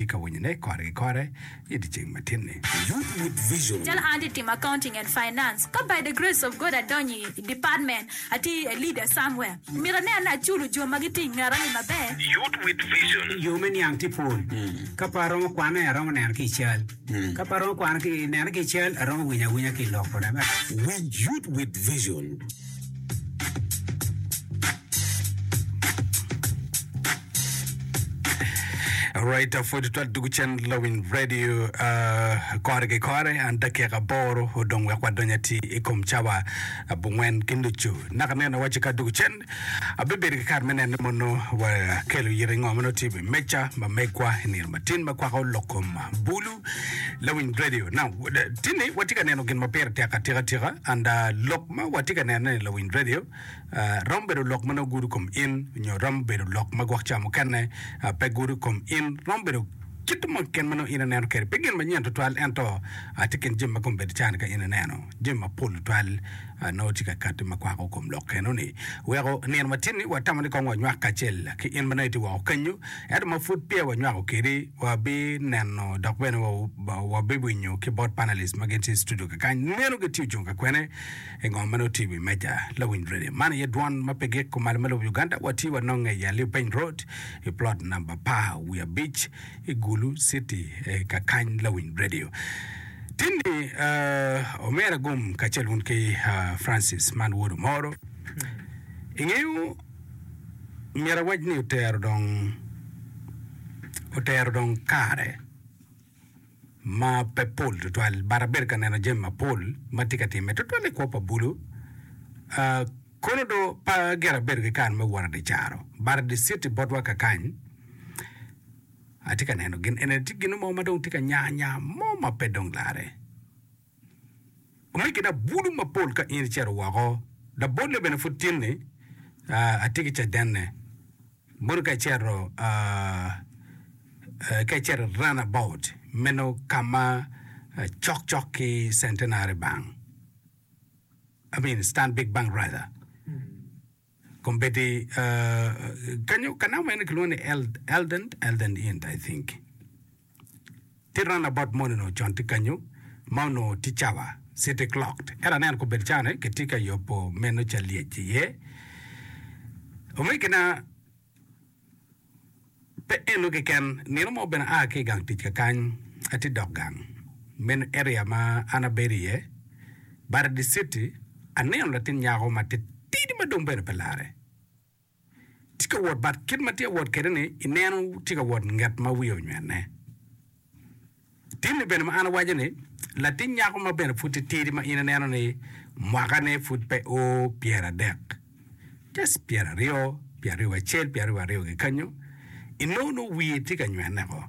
i ka winyone kore ki kore i dyeceng matinni. Youth with Vision. Calo an atye timo Accounting and Finance, ka by the grace of God adonyo i department, atye i a leader somewhere, myero aneno ni aculo jo ma gitye i ngeta ni maber. Youth with Vision. Yo me niang tye pol. Ka pe aromo kwane, aromo neno ki i cal. Ka pe aromo neno ki i cal, aromo winyo awinya ki i lok bene. Winj Youth with Vision. Alright, uh, pwod twal dugu cen lawiny radio uh, kore ki kore an dakika aboro odong wek wadony ati i kom cawa abongwen ki nucu naka neno waci ka dugu cen abibedo ki kare me nene mono wakelo yiri ngo mono tye iwi meja ma megwa i nino matin ma kwako lok kom bulu lawiny radio na tini watye ka neno gin ma pire tek atika tika and uh, lok Ma watye ka nenone i Lawiny Radio romo bedo lok ma nongo gudo kom in nyo romo bedo lok ma gwok ca mukene pe gudo kom in. Romo bedo kit mo keken ma nongo in ineno kwede. Pe gin manyen tutwal ento tye kin jami ma kome bedo car-ni ka in ineno. Jami mapol tutwal nongo tye ka katti ma kwako kom lok enoni. Weko nino matin-ni watamo ni kong wanywak kacel ki in ma nongo itye woko kenyu ento ma pud peya wanywako kwedi. Wabineno dok bene wabibwinyo ki bot panelist ma gin tye i studio kakany ni meno gitye ocung ka kwene i ngo ma nongo tye i wi meja lawiny redio. Man aye dwon ma pe gik kumalo me lobo Uganda. Watye wanonge i Aliu Peny Road i plot namba apar wiye abic i Gulu City kakany lawiny redio. Tinni uh, omera Gum kacel wun ki uh, Francis man wodu moro. Ingeyo Omyero awac ni otero dong otero dong kare ma pe pol tutwal but abedo ka neno jami mapol ma tye ka timme tutwal i kwo pa bulu uh, kono do pa gire abedo ki kare me wot adi caro but adi city botwa kakany atye ka neno gin ene tye gino mo ma dong tye ka nya nya mo ma pe dong lare Kadi ki dong bulu mapol ka in icito woko, dok bolle bene pud tin-ni, atye ki cadenne. Mono ka icito, ka icito i Runabout, meno ka ma cokcok ki Centenary Bank, I mean, Stanbic Bank rather, Kombeddi kanyo ka naka meno kilwongo ni Eldon, Eldon Inn I think. Tye round about moni onongo con tye kanyo ma onongo tye cawa city clocked. Ento aneno kombeddi cane kitye ka yobo meno ca lyec iye. Omegina Pe eno keken, nino mo bene aa ki i gang tic kakany, atye dok gang. Meno area ma an abedo iye, bada diciti, aneno latin nyako ma titidi ma dong bene pe larre tye ka wot but kit ma tye ka wot kwede-ni ineno tye ka wot nget ma wiye onywene. Timmi bene ma an awaco ni, latin nyako ma bene pud titidi ma in ineno ni mwakane pud pe o pyeradek, just pyeraryo, pyeraryo wacel, pyeraryo waryo kikanyo, inongo nongo wiye tye ka nywene ko.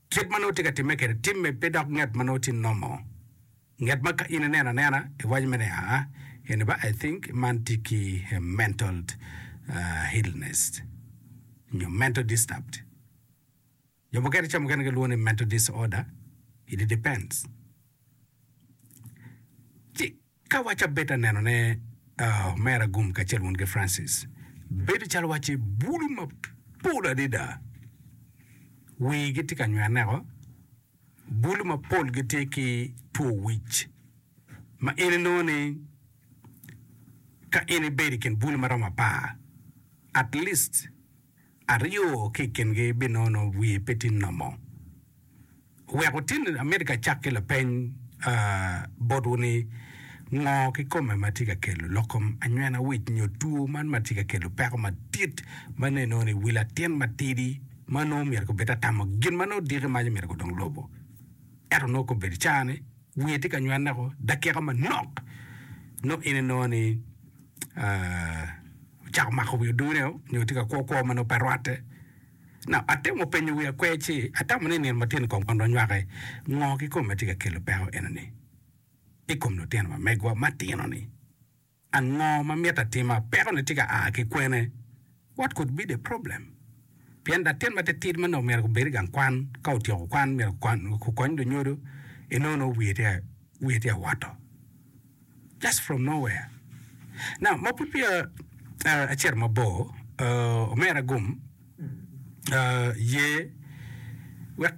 Kit ma nongo tye ka timme kede timme pe dok nget ma nongo tye nomo. Nget ma ka in ineno anena, iwaco mere ni aa, eni ba I think man tye ki mental illness nyo mental disturbed. Jo mukene i ca mukene gilwongo ni mental disorder, it depends. Ci ka waci abed aneno ne uh, Mera Agum kacel wun ki Francis, bedo calo waci bulu mapol adida wii gitye ka nywene neko, bulu mapol gitye ki two wic ma in inongo ni ka in ibedo i kin bulu maromo apar at least Aryo ki i kingi binono wiye pe tin nomo. Wek wutin ni amito ka cak ki lapeny botwu ni, Ngo kikome ma tye ka kelo loko anywena wic nyo two man ma tye ka kelo peko madit ma nongo inongo ni wi latin matidi ma nongo myero kobed atamo gin ma nongo diki mac omyero kudong lobo? Ento nongo kobedi caa ni, Wiye tye ka nywanne ko dakika manok nongo in inongo ni ocako mako wi oduneo nyo tye ka kwo kwo ma nongo pe rwatte. Now, atemo penyo wiya kwer ci atamo ni nino matino kong kon wanywake ngo kikome ma tye ka kelo peko enoni i kom lutino ma megwa matino ni. Ango ma myero atima? Pekone tye ka a ki kwene? What could be the problem? Pien latin matitidi manok myero gubed i gang kwan, ka otyeko kwan, myero gukony lunyodo, enongo nongo wiye tye wiye tye ka woto. Just from nowhere. Now, ma pud peya acito mabor, omera gum, ye wek.